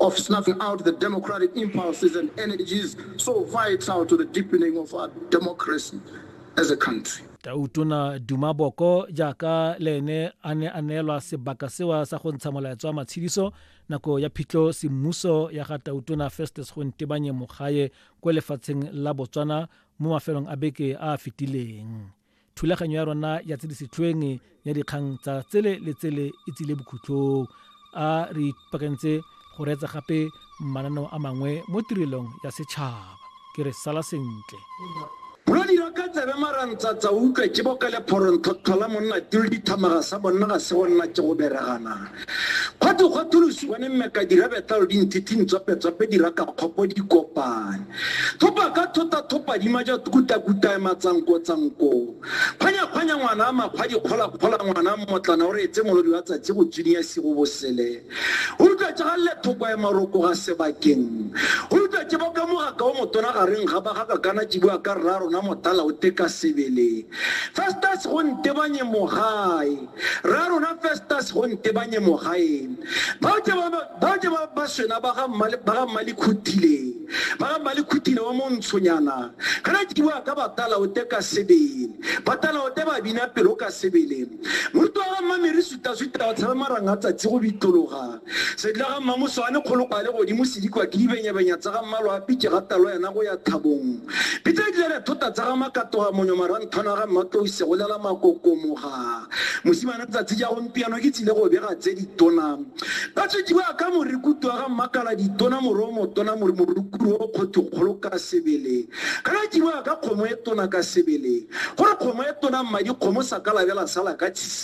of snuffing out the democratic impulses and energies so vital to the deepening of our democracy as a country. tautona duma boko jaaka le ene a ne a neelwa sebaka sewa sa go ntsha molaetso wa matshediso nako ya phitlho semmuso ya ga tautona festus go ntebanye mogae ko lefatsheng la botswana mo mafelong a beke a a fetileng thulaganyo ya rona ya tse di setlhoeng ya dikgang tsa tsele le tsele e tsile bokhutlong a re ipakantse go reetsa gape mananeo a mangwe mo tirelong ya setšhaba ke re sala sentle ka tsebe marantsatsa utlwe ke boka lephoronthotlhola monna tilo dithamaga sa bonna ga se go nna ke go beregana Gwa twe gwa tholosiwa ne mmeka dirabetalo di nthithing tswape-tswape di raka kgopo di kopane. Thopa ka thota thopa di maja kuta-kuta e matsanko-tsanko. Kgwanya-kgwanya ngwana a makgwa di kgola-kgola ngwana mmotlana o re etse molodi wa tsatsi go tsuniya sigo bosele. O rutwa tsa galle thoko e maroko ga sebakeng. O rutwa tse ba ka mogaka o motona ga reng ga ba ga kakana tibua ka rra rona motala o teka sebele. Festus go ntebanye mogae. Rra rona Festus go ntebanye mogaeng. Bao ke ba bao ke ba ba swena ba ga mmale ba ga mmale khutile. Ba ga mmale khutile wa montshonyana. Kana ke bua ka batala o te ka sebele. Batala o te ba bina pelo ka sebele. Moruti wa ga mmamere suta suta o tshabe maranga tsatsi go bitologa. Sedila ga Mmamoso a le kgoloko a le godimo sedikwa ke dibenyabenya tsa ga mmalo a pitše ga talo yena go ya thabong. Pitsa e dile re thota tsa ga makatoga monyo maranthwana ga mmatlouse go lela makokomoga. Mosimane tsatsi ja gompiano ke tsile go bega tse ditona. Ba tswetši ba ka morikutu wa ga mmakala ditona moro o motona mori morukuru o kgotho kgolo ka sebele. Ka la tšiboa ka kgomo e tona ka sebele. Gore kgomo e tona mmadi kgomo sa ka labela sala ka tshisi.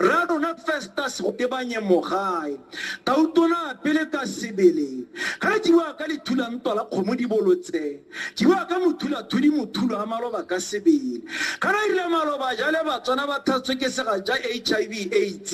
Rra rona Festus go tebanye mogae, tautona pele ka sebele, ga jiwa ka lethula ntwa la kgomo dibolo tse, jiwa ka mothula thudi mothulo a maloba ka sebele. Ga ra rile maloba jale batswana ba thatswe ke sega ja HIV AIDS,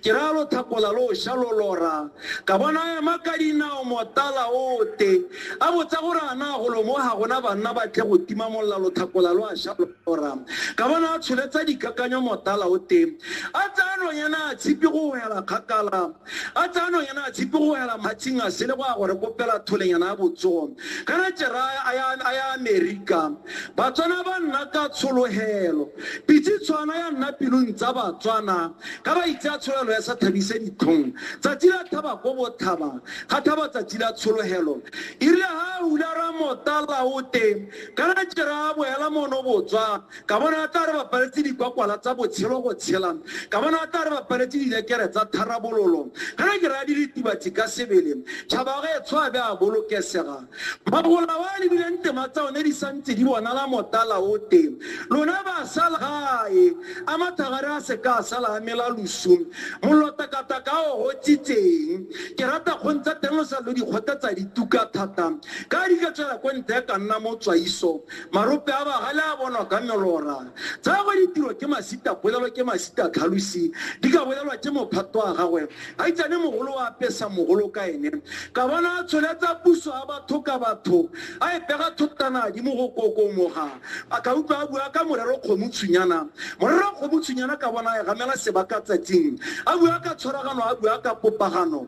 ke ra lo thakola lo sha lo lora, ka bona ema ka dinao motala ote, a botsa gore ana golo mo ga gona banna ba tle go tima molla lo thakola lo a sha lo. Joram. Ka bona a tsholetsa dikakanyo motala o teng a tsaya nonyana a tshipi go hela kgakala a tsaya nonyana a tshipi go hela matshing a sele go ya gore kopela tholenyana ya botsogo kana jeraya a ya amerika batswana ba nna ka tshologelo pitse tshwana ya nna pelong tsa batswana ka ba itse a tsholelo ya sa thabise ditlhong tsatsi la thaba ko bothaba ga thaba tsatsi la tshologelo irile ga a ula ra motala o teng Ka la jera a boela mono botswa, ka bona a tla re ba paletse dikwakwala tsa botshelo go tshela, ka bona a tla re ba paletse dilekere tsa tharabololo. Ka la jera a di ritibatsi ka sebele, tšhaba ge tsho a be a bolokesega. Magola wa lebileng tema tsa one di santse di bonala motala o te. Lona ba sa la gae, a mathagare a se ka a sala a mela losu. Mollo takataka o gotsitseng. Ke rata kgong tsa teng lo sa lo di kgotetsa dituka thata. Ka di ka tswela ko ntle ka nna mo tswaiso, marope a bagale a bonwa ka melora. Tsa gwe ditiro ke masita polelo ke masita tlhalosi, di ka bolelwa ke mophato wa gagwe. A itsane mogolo wa apesa mogolo ka ene. Ka bona a tsholetsa puso ya batho ka batho, a e pega thotana di mo go kokomoga. A ka utlwa a bua ka morero kgomutshwinyana. Morero kgomutshwinyana ka bona a e gamela sebaka tsatsing. A bua ka tshwaragano a bua ka popagano.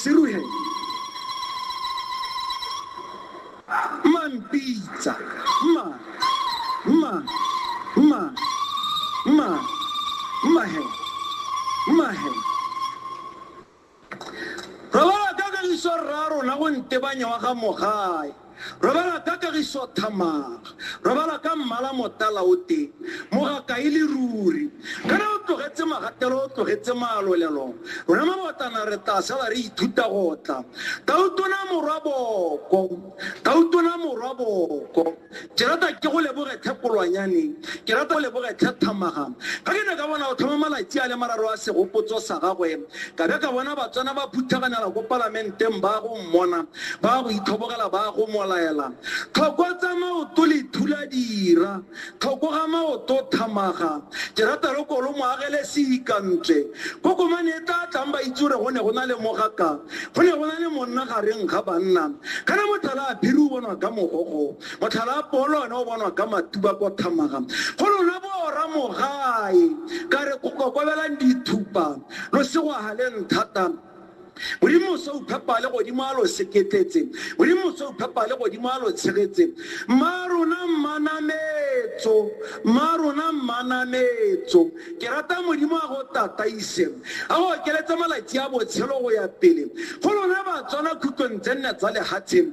seruhe mma mpitsa mma mma mma mma mma he mma he re ba ka ka leswa rra rona go ntebanya wa ga mogae Robala ka kagiso thamaga. Robala ka mmala motala o tee, mogakae le ruri. Kana o tlogetse magatelo, o tlogetse malolelo. Rona mabotlana re tla sala re ithuta go tla. Tautona morwa boko, Tautona morwa boko. Ke rata ke go leboge tlhe Kolwanyane, ke rata go leboge tlhe Thamaga. Fa ke ne ka bona o tlhoma malatsi a le mararo a segopotso sa gagwe, Ka be ka bona Batswana ba phuthaganela ko palamenteng ba go mmona, ba go itlhobogela ba go molaela, Tlhokotsa maoto lethula dira, tlhokoga maoto thamaga, ke rata lo kolo mo agele seikantswe. Kokomane e tla tlang ba itse gore go ne go na le mogaka, go ne go na le monna gareng ga banna. Kana motlhala a phiri o bonwa ka mogogo. Motlhala wa Polo ona o bonwa ka matuba kwa Thamara. Go lona boora mogae, ka re kokobelang dithupa, lo se go haleng thata. Modimo o se o phepa le godimo a lo seketletse, Modimo o se o phepa le godimo a lo tshegetse. Mma rona mmanametso, mma rona mmanametso, ke rata Modimo a go tataise, a go okeletse malatsi a botshelo go ya pele. Go lona Batswana khutlong tse nne tsa lehatsheng,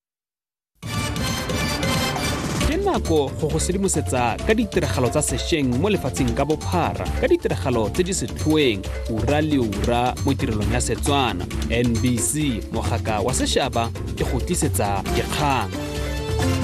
ke nako go go sedimosetsa ka ditiragalo tsa sešweng mo lefatsheng ka bophara ka ditiragalo tse di setlhoeng ura le ura mo tirelong ya setswana nbc mogaka wa sešaba ke go tlisetsa dikgang